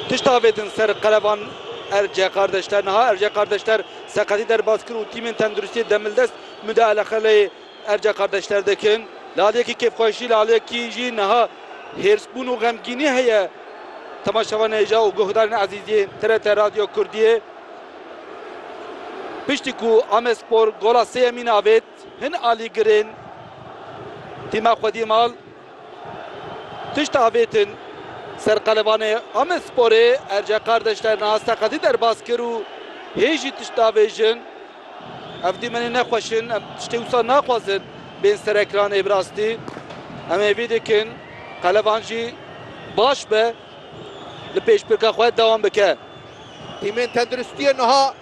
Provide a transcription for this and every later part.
Tişt avêtin ser qerevan Erce Kardeşler. Niha Erce Kardeşler seqetî derbas kir û tîmên tenduristiyê demildest mudeale xeleyê Erce Kardeşler dikin. Li aliyekî kêfxweşî, li aliyekî jî niha hêrsbûn û xemgînî heye temaşevan hêja û guhdarên ezîz yên TRT Radyo Kurdiyê. Piştî ku Amedspor gola sêyemîn avêt, hin alîgirên tîma xwe dî mal. Tişt avêtin ser qelebanê Amedsporê Erce Kardeş derna seqetî derbas kir û hê jî tişt davêjin, Ev dîmenên ne xweş in, em tiştê wisa naxwazin bên ser ekranê bi rastî em hêvî dikin qeleban jî baş be li pêşbirka xwe dewam bike. Tîmên tenduristiyê niha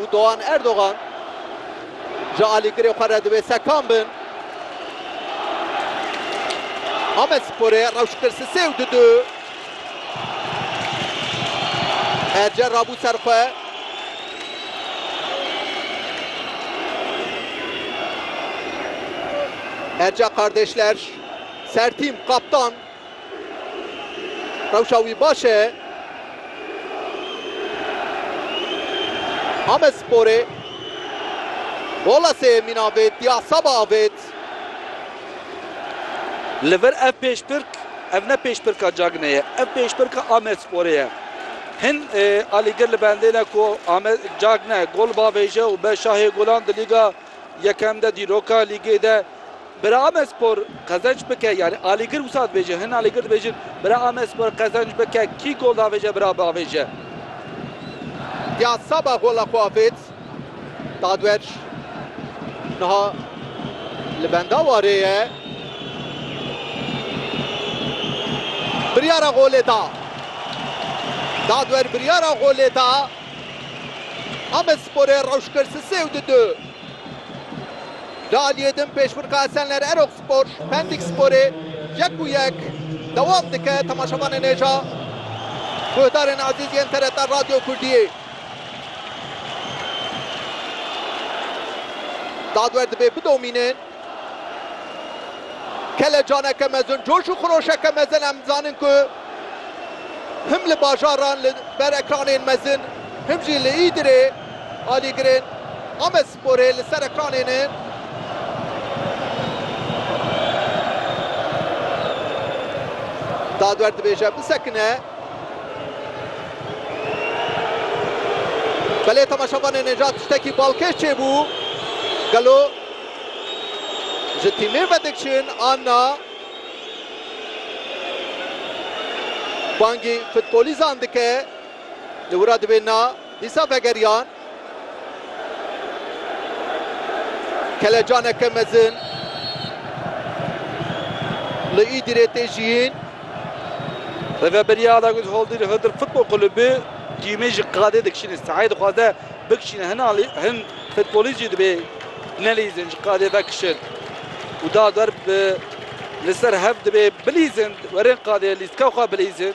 Û Doğan Erdogan ji alîgirê xwe re divê sekan bin. Amedsporê rewş kir si sê û di du. Erce rabû ser xwe. Erce Kardeşler, sertîm, kaptan. Rewşa wî baş e. Amedsporê gola sêyemîn avêt, dî asaba avêt. Li vir ev pêşbirk, ev ne pêşbirka Cagney ye, ev pêşbirka Amedsporê ye. Hin alîgir li bendê ne ku Cagne gol bavêje û be şahê golan di Lîga Yekem de, dîroka Lîgê de. Bira Amespor qezenç bike yanî alîgir wisa dibêje hin alîgir dibêjin bira Amespor qezenç bike kî gol davêje bira biavêje. Ya Saba gola xwe avêt Dadwer niha li benda warê ye biryara golê da Dadwer biryara golê da Amesporê rewş kir sisê û di du. Li aliyê din pêşbirka Esenler Erokspor Pendik Sporê yek û yek dewam dike. Temaşevanên hêja guhdarên ezîz yên TRT Radyo Kurdiyê. Dadwer dibê bidomînin. Kelecaneke mezin, coş û xiroşeke mezin em dizanin ku him li bajaran li ber ekranên mezin him jî li Îdirê. Alîgirên Amedsporê li ser ekranê ne. Dadwer dibêje bisekine. Belê temaşevanê ne ja tiştekî balkêş çêbû. Gelo ji tîmê ve dikiçin an na? Bangî futbolîzan dike. Li wira dibê na. Dîsa vegeriyan kelecaneke mezin li Îdirê tê jiyîn. Rêveberiya Alagöz Holdîr Hıdır Futbol Kulübü cîmê ji qadê dikişîne. Sahayê dixwaze bikişîne. Hin alî hin futbolîst jî dibê nelîzin ji qadê vekişin û da derb li ser hev dibê bilîzin. Werin qadê lîstka xwe bilîzin.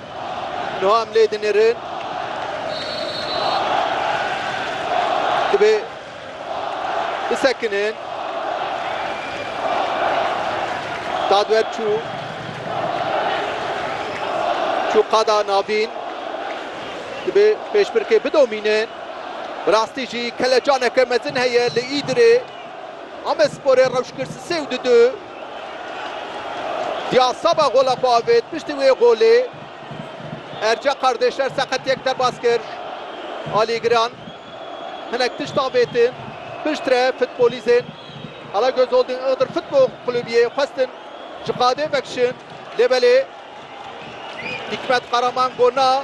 Niha em lê dinêrin. Divê bisekinin. Dadwer çû. Çû qada navîn. Divê pêşbirkê bidomînin. Bi rastî jî kelecaneke mezin heye li Îdirê. Amedsporê rewş kir sisê û di du. Ya seba gola xwe avêt piştî wê golê Erce Qardêşer seqetiyek derbas kir. Alî Giran hinek tişt avêtin piştre futbolîzên Alagöz Holding Iğdır Futbol Kulübiyê xwestin ji qadê vekişin lê belê Hikmet Karaman got na.